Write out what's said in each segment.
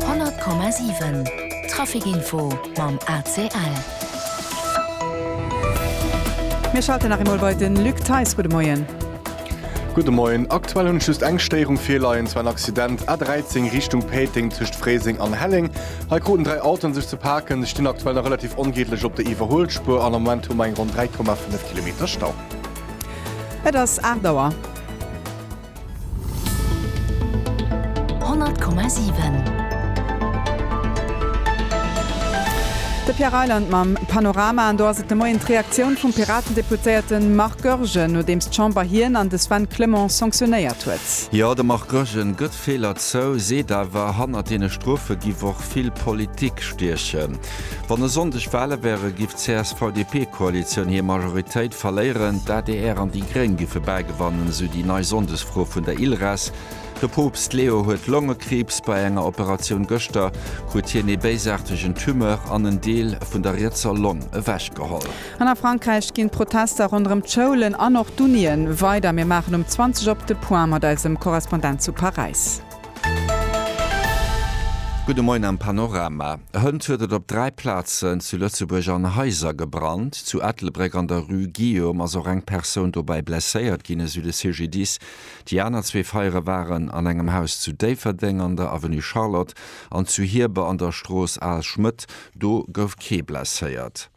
100,7 Trafic Info mam ACL. Mir schalten nach eemol bei den Luc Theis. Gudde Moien. Gudde Moien. Aktuell hunn ech just eng Stéierung virleien, et war en Accident A13 Richtung Péiteng tëscht Fréiseng an Helleng. Hei kruten dräi Autoen sech ze paken. Se stinn aktuell nach relativ ongeedlech op der Iwwerhuelspuer an am Moment hu mer eng ronn 3,5 Kilometer Stau. Et ass 8 Auer. De Pierre Reyland mam Panorama. An do ass et de Moien d'Reaktioun vum Piraten-Deputéierte Marc Goergen, nodeems d'Chamber hien an de Sven Clement sanktionéiert huet. Jo, de Marc Goergen gëtt Feeler zou, seet awer, hannert deene Strofe giff och vill Politik stiechen. Wann e Sonndeg Wale wäre giff d'CSV-DP-Koalitioun hir Majoritéit verléieren, d'ADR an déi Gréng giffe bäigewannen, esou déi nei Sonndesfro vun der ILRES. De Poopst Leo huet Longekriibs. Bei enger Operatioun gëschter krut hien ee béisaartegen Tumeur an en Deel vun der rietser Long ewechgeholl. An a Frankräich ginn d'Protester ronderëm d'Schoulen an och d'Unien weider. Mir maachen um 20 op de Point mat eisem Korrespondent zu Paräis. Gudde Moien am Panorama. Hënt huet et op dräi Plazen zu Lëtzebuerg an Haiser gebrannt. Zu Ettelbréck an der Rue Guillaume ass och eng Persoun dobäi blesséiert ginn, esou de CGDIS. Déi aner zwee Feiere waren an engem Haus zu Déifferdeng an der Avenue Charlotte an zu Hierber an der Strooss Al Schmëtt. Do gouf kee blesséiert.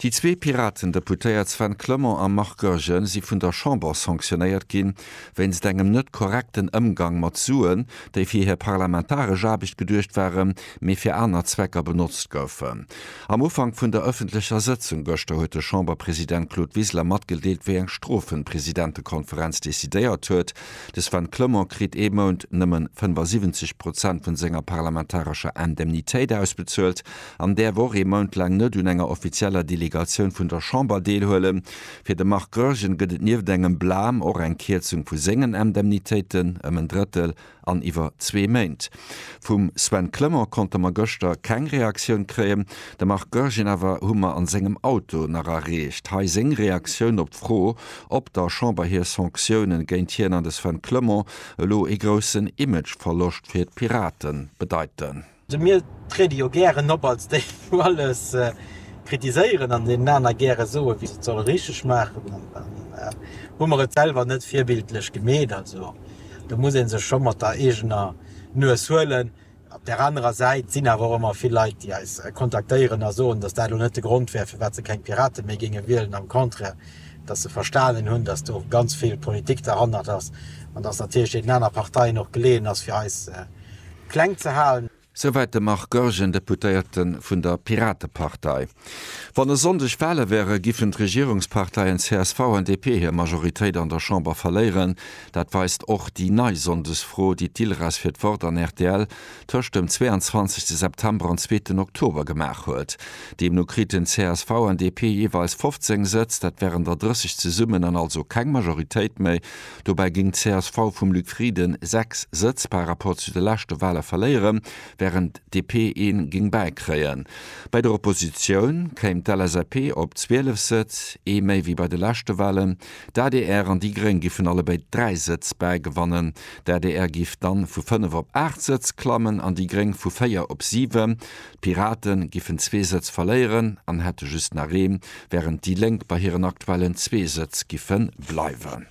Déi zwee Piraten-Deputéiert Sven Clement a Marc Goergen si vun der Chamber sanktionéiert ginn, wéinst engem net korrekten Ëmgang mat Suen, déi fir hir parlamentaresch Aarbecht geduecht waren, mee fir aner Zwecker benotzt goufen. Am Ufank vun der ëffentlecher Sëtzung gëschter huet de Chamberpresident Claude Wiseler matgedeelt, wéi eng Strofen d'Presidentekonferenz decidéiert huet, De Sven Clement kritt ee Mount nëmmen 75 Prozent vun senger parlamentarescher Indemnitéit ausbezuelt, an däerf och ee Mount laang net un enger offizieller Delegatioun vun der Chamber deelhuelen. Fir de Marc Goergen gëtt et nieft engem Blâme och eng Kierzung vu sengen Indemnitéiten ëm en Drëttel an iwwer zwee Méint. Vum Sven Clement konnte mer gëschter keng Reaktioun kréien, de Marc Goergen awer hu mer an sengem Auto nach erreecht. Hei seng Reaktioun op d'Fro, ob der Chamber hir Sanctiounen géint hien an de Sven Clement elo ee groussen Image-Verloscht fir d'Piraten bedeiten. De mir tréde jo gären op als déi wou alles kritiséieren an deenen aner gäre soe wéi se et solle richteg maachen an dann hu mer et selwer net virbildlech gemeet. Also do muss ee sech scho mat der eegener Nues huelen. Op där anerer Säit, et sinn awer och ëmmer vill Leit déi eis kontaktéieren a soen, datt dat elo net de Grond wär firwat se keng Pirate méi géinge wielen, am Contraire, datt se verstanen hunn, datt do ganz vill Politik derhannert ass an datt natierlech deenen aner Parteien och geleeën ass fir eis kleng ze halen. Souwäit de Marc Goergen, Deputéierte vun der Piratepartei. Wann e Sonndeg Wale wäre giffen d'Regierungsparteien csv an DP hir Majoritéit an der Chamber verléieren. Dat weist och déi nei Sonndesfro, déi d'ILRAS fir d'Wort an rtl tëscht dem 22 September an zweeten Oktober gemaach huet. Deemno kriten csv an DP jeeweils 15 Sëtz, dat wären der 30 zesummen, an also keng Majoritéit méi Dobäi géing d'CSV vum Luc Frieden 6 Sëtz par Rapport zu de leschte Wale verléieren, wärend d'DP ee géing bäikréien. Bei der Oppositioun kéim d'LSAP op 12 Sëtz, ee méi wéi bei de leschte Walen. D'adr an déi Gréng giffen allebéid 3 Sëtz bäigewannen. D'adr giff dann vu 5 op 8 Sëtz klammen an déi Gréng vu 4 op 7. D'Pirate giffen zwee Sëtz verléieren an hätte just nach ee, wärend déi Lénk bei hiren aktuellen zwee Sëtz giffe bleiwen.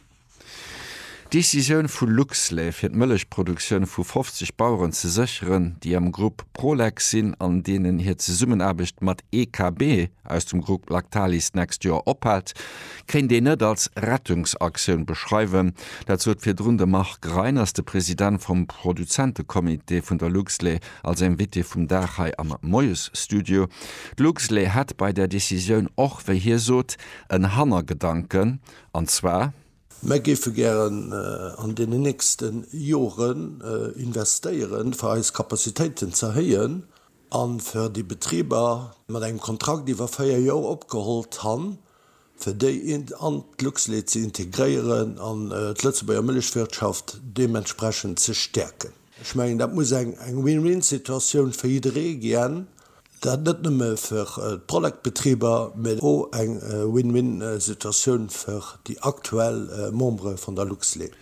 D'Decisioun vu Luxlait fir d'Mëllechproduktioun vu 50 Baueren ze sécheren, déi am Grupp Prolex sinn an deenen hir Zesummenaarbecht mat EKB aus dem Grupp Lactalis d'nächst Joer ophält, kéint een net als Rettungsaktioun beschreiwen. Dat sot virdrun de Marc Reiners, de President vum Produzentecomité vun der Luxlait. Als Invitée vum Dag hei am Moiesstudio. D'Luxlé hätt bei där Decisioun och, wéi hie sot, en Hannergedanken, an zwar. Mär géife gären an deenen nächste Joren investéiere fir eis Capacitéiten ze erhéien a fir déi Betriber mat engem Kontrakt iwwer véier Joer opgeholl d'Han, fir déi an d'Luxlait ze integréieren an d'Lëtzebuerger Mëllechwirtschaft deementsprechend ze stäerken. Ech mengen, dat muss eng Win-win-Situatioun fir jidderee gien, dat net nëmme fir d'Prolectbetriber, mä och eng Win-win-Situatioun fir déi aktuell Membere vun der Luxlait.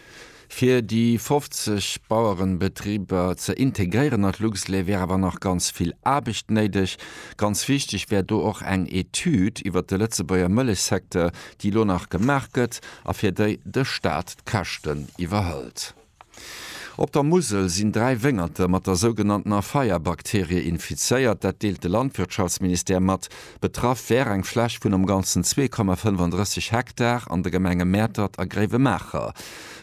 Fir déi 50 Bauerenbetriber ze integréieren an d'Luxlait wär awer nach ganz vill Aarbecht néideg. Ganz wichteg wär do och eng Etüd iwwert de Lëtzebuerger Mëllechsecteur, déi elo nach gemaach gëtt a fir déi de Staat d'Käschten iwwerhëlt. Op der Musel sinn dräi Wéngerte mat der sougenanntener Feierbakterie infizéiert. Dat deelt de Landwirtschaftsministère mat. Betraff wär eng Fläch vun am Ganzen 2,35 Hektar an de Gemenge Mäertert a Gréiwemaacher.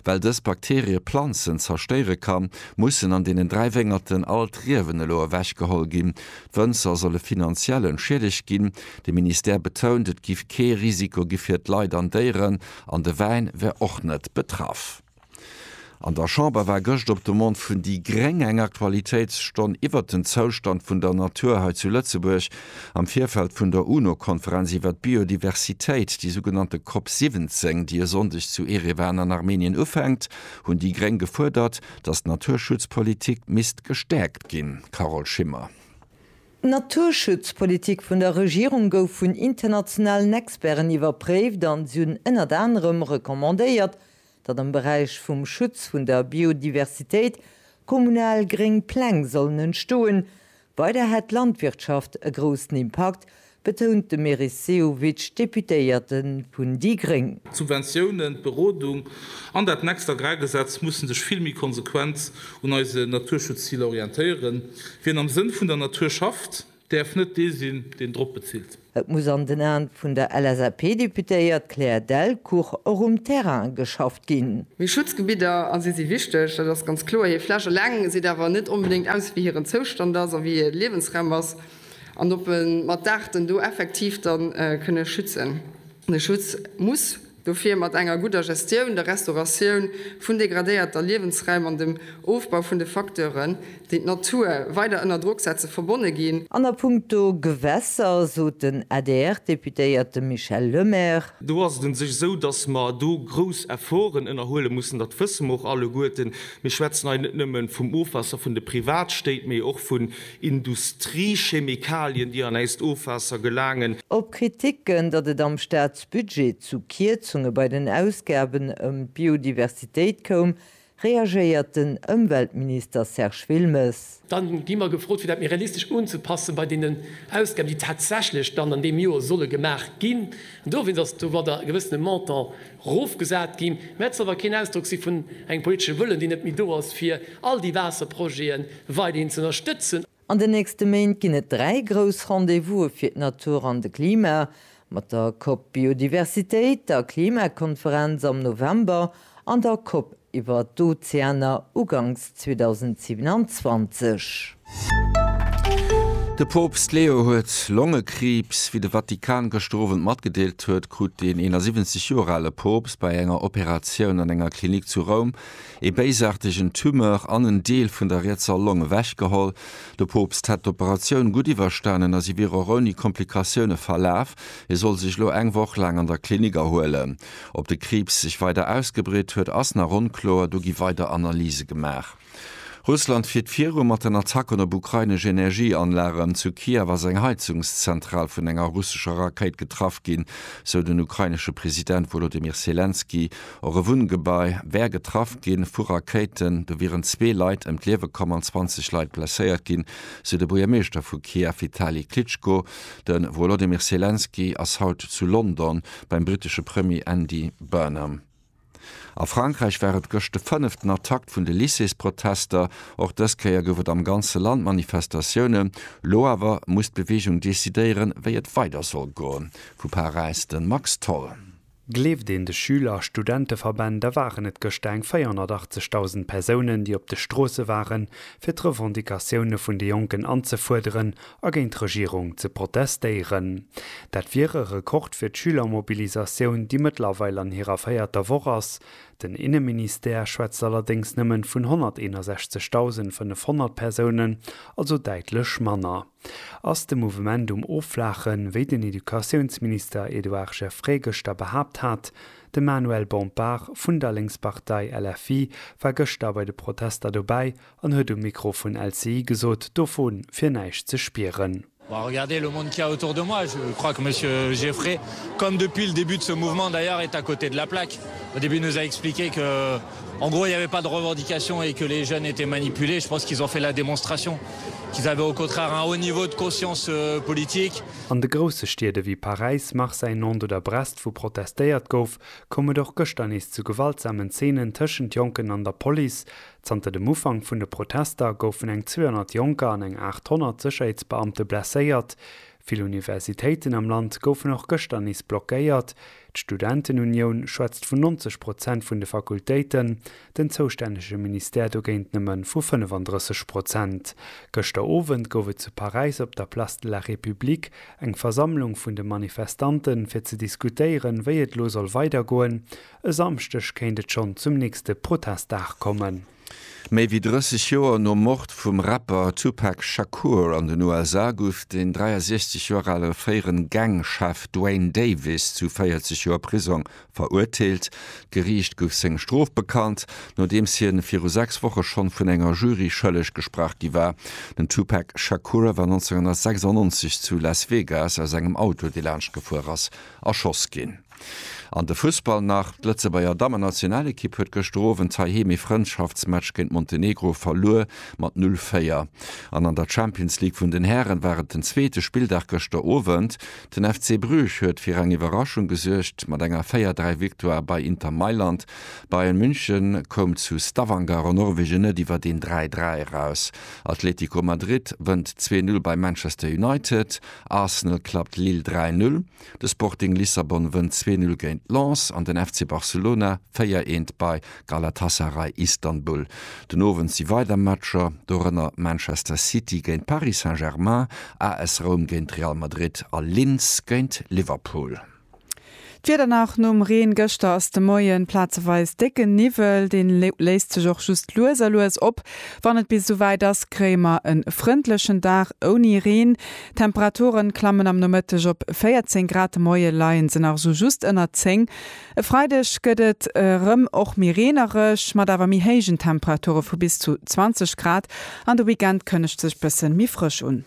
Well dës Bakterie Planzen zerstéiere kann, mussen an deenen dräi Wéngerten all d'Riewen elo ewechgeholl ginn. D'Wënzer solle finanziell entschiedegt ginn. De Ministère betount, et giff kee Risiko gi fir d'Leit an Déieren an de Wäin wär och net betraff. An der Chamber war gëscht op Demande vun déi gréng eng Aktualitéitsstonn iwwert den Zoustand vun der Natur hei zu Lëtzebuerg am Virfeld vun der UNO-Konferenz iwwert d'Biodiversitéit, déi sougenannte Cop 17, déi e Sonndeg zu Erevan an Armenien ufänkt, hunn déi gréng gefuerdert, datt d'Naturschutzpolitik misst gestäerkt ginn. Carole Schimmer. D'Naturschutzpolitik vun der Regierung gouf vun internationalen Experten iwwerpréift an si hunn ënnert anerem recommandéiert, datt am Beräich vum Schutz vun der Biodiversitéit kommunal gréng Pläng sollen entstoen. Weider hätt d'Landwirtschaft e groussen Impakt, betount de Meris Sehovic, Deputéierte vun déi gréng. D'Subventiounen, d'Berodung an dat next Agrargesetz musse sech vill méi konsequent un eise Naturschutzziler orientéieren. Wien am Sënn vun der Natur schafft, Däerf net dee sinn, deen drop bezilt. Et muss an den Aen vun der LSAP-Deputéiert Claire Delcourt och um Terrain geschafft ginn. Mee Schutzgebidder, a si si wichteg, dat ass ganz kloer. Hir Fläch eleng seet awer net onbedéngt aus, wéi hiren Zoustand ass a wéi hir Liewensraum ass an ob e mat d'Aarten do effektiv da kënne schützen. De Schutz muss. Dofir mat enger gudder Gestioun, der Restauratioun vun degradéierter Liewensräim an dem Ofbau vun de Facteuren, déi d'Natur weider ënner Drock setze verbonne ginn. An a puncto Gewässer sot den ADR-Deputéierte Michel Lemaire. Do ass et un sech esou, datt mer do grouss Efforten ënnerhuele mussen. Dat wësse mer och alleguerten. Mir schwätzen hei net nëmme vum Ofwaasser vun de Privatstéit, mee och vun Industriechemikalien, déi an äist Ofwaasser gelaangen. Op Kriticken, datt et am Staat Budget zu Kierzunge bei den Ausgaben ëm d'Biodiversitéit koum, reagéiert den Ëmweltminister Serge Wilmes. Dann gi mer gefrot, fir dat méi realistesch unzepassen bei deenen Ausgaben, déi tatsächlech dann an deem Joer solle gemaach ginn. An dowéinst ass domat e gewëssene Montant erofgesat ginn. Mä et soll awer keen Ausdrock si vun engem politesche Wëllen, deen net méi do ass, fir all déi Waasserprojete weiderhin z'ënnerstëtzen. An den nächste Méint ginn et dräi grouss Rendez-vouse fir d'Natur an de Klima, mat der COP Biodiversitéit, der Klimakonferenz am November an der COP iwwer d'Ozeaner uganks 2027. De Poopst Leo huet Longekriibs. Wéi de Vatikan gëschter Owend matgedeelt huet, krut den 71 Joer ale Poopst bei enger Operatioun an enger Klinik zu Roum ee béisaartegen Tumeur an en Deel vun der rietser Long ewechgeholl. De Poopst hätt d'Operatioun gutt iwwerstanen a si wier och ouni Komplikatioune verlaf. Hie soll sech elo eng Woch laang an der Klinik erhuelen. Ob de Kriibs sech weider ausgebreet huet, ass nach onkloer, do gi weider Analyse gemaach. Russland fiert viru mat den Attacken op ukrainesch Energieanlagen. Zu Kiew ass eng Heizungszentral vun enger russescher Rakéit getraff ginn, sou den ukrainesche President Wolodymyr Selenskyj Och e Wunngebai wär getraff gi vu Rakéiten. Do wieren zwee Leit ëm d'Liewe komm an 20 Leit blesséiert ginn, sou de Buergermeeschter vu Kiew, Vitali Klitschko. De Wolodymyr Selenskyj ass haut zu London beim brittesche Premier Andy Burnham. A Frankräich war et gëscht de fënneften Attackt vun de Lycées-Protester. Och dës Kéier gouf et am ganze Land Manifestatiounen. Lo awer muss d'Beweegung decidéieren, wéi et weider soll goen. Vu Paräis de Max Tholl. Gleeft een de Schüler a Studenteverbänn, da waren et gëschter eng 480.000 Persounen, déi op de Stroosse waren, fir d'Revendicatioune vun de Jonken anzefuerderen a géint d'Regierung ze protestéieren. Dat wier e Rekord fir d'Schülermobilisatioun, déi mëttlerweil an hirer véierter Woch ass. Den Inneministère schwätzt allerdéngs nëmmen vun 161.500 Persounen, also däitlech manner. Ass de Mouvement um Offlaachen, wéi den Educatiounsminister Edouard Geffray gëschter behaapt hat? De Manuel Bompard vun der Lénkspartei LFI war gëschter bei de Protester dobäi an huet um Mikro vun LCI gesot, dovu wier näischt ze spieren. En gros, il n'y avait pas de revendication et que les jeunes étaient manipulés. Je pense qu'ils ont fait la démonstration qu'ils avaient au contraire un haut niveau de conscience politique. An de grousse Stied ewéi Paräis, Marseille, Nantes oder Brest, wou protestéiert gouf, koum et och gëschter nees zu gewaltsamen Zeenen tëschent Jonken an der Police. Zanter dem Ufank vun de Protester goufen eng 200 Jonker an eng 800 Sécherheetsbeamte blesséiert. Vill Universitéiten am Land goufen och gëschter nees blockéiert. D'Studentenunioun schwätzt vun 90 Prozent vun de Fakultéiten, den zoustännege Ministère dogéint nëmme vu 35 Prozent. Gëschter Owend gouf et zu Paräis op der Place de la République eng Versammlung vun de Manifestanten, fir ze diskutéieren, wéi et elo soll weidergoen. E Samschdeg kéint et schonn zum nächste Protestdag kommen. Méi wéi 30 Joer nom Mord vum Rapper Tupac Shakur an den USA gouf den 63 Joer ale fréiere Gang-Chef Duane Davis zu 40 Joer Prisong verurteelt. D'Geriicht gouf seng Strof bekannt, nodeems hien viru sechs Woche schonn vun enger Jury schëlleg gesprach gi war. Den Tupac Shakur war 1996 zu Las Vegas aus engem Auto, dee laanscht gefuer ass, erschoss ginn. An de Fussball nach, D'Lëtzebuerger Dammennationalekipp huet gëschter Owend heiheem ee Frëndschaftsmatch géint Montenegro verluer mat 0, 4. An an der Champions League vun den Hären war et den zweete Spilldag gëschter Owend. Den FC Bruges huet fir eng Iwwerraschung gesuergt mat enger 4, 3 Victoire bei Inter Mailand. Bayern München koum zu Stavanger an Norwegen net iwwer een 3, 3 eraus. Atletico Madrid wënnt 2, 0 bei Manchester United. Arsenal klappt Lille 3, 0. De Sporting Lissabon wënnt 2-0 géint Lens an den FC Barcelona 4 eent bei Galatasaray Istanbul. Den Owend si weider Matcher, dorënner Manchester City géint Paris Saint-Germain, AS Roum géint Real Madrid a Linz géint Liverpool. D'Wieder nach nom Reen gëschter, ass de Moien plazeweis décken Niwwel, dee léist sech och just lues a lues op. Wann et bis esou wäit ass, kréie mer e frëndlechen Dag ouni Reen. D'Temperaturen klammen am Nomëtteg op 14 Grad, de Moie leien se nach esou just ënner 10. E Freideg gëtt et erëm och méi reenereg, mat awer méi héijen Temperature vu bis zu 20 Grad an de Weekend kënnegt sech bëssen méi frësch un.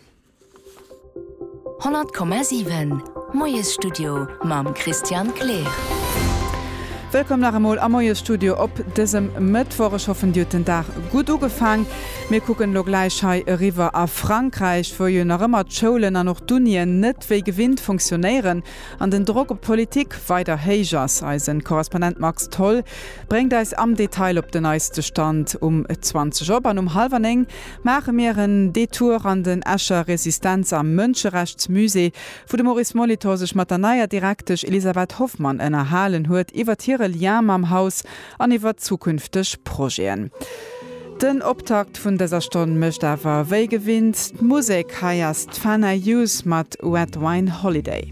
100,7 Moiesstudio mam Christian Kleer. Wëllkomm nach emol am Moiesstudio op dësem Mëttwoch. Ech hoffen dir hutt den Dag gutt ugefaang. Mir kucken elo gläich hei eriwwer a Frankräich, wou jo nach ëmmer d'Schoulen an och d'Unien net wéi gewinnt funktionéieren an den Drock op d'Politik weider héich ass. Eisen Korrespondent Max Tholl bréngt eis am Detail op den neiste Stand. Um 20 op an um hallwer 9 maache mir en Detour an den Escher Resistenz a Mënscherechtsmusée, wou de Maurice Molitor sech mat der neier Direktesch Elisabeth Hoffmann ënnerhalen huet iwwert hire Lien mam Haus an iwwer zukünfteg Projeten. Den Optakt vun dëser Stonn mécht awer wéi gewinnt d'Musek. Hei ass d'Fana Youth mat Red Wine Holiday.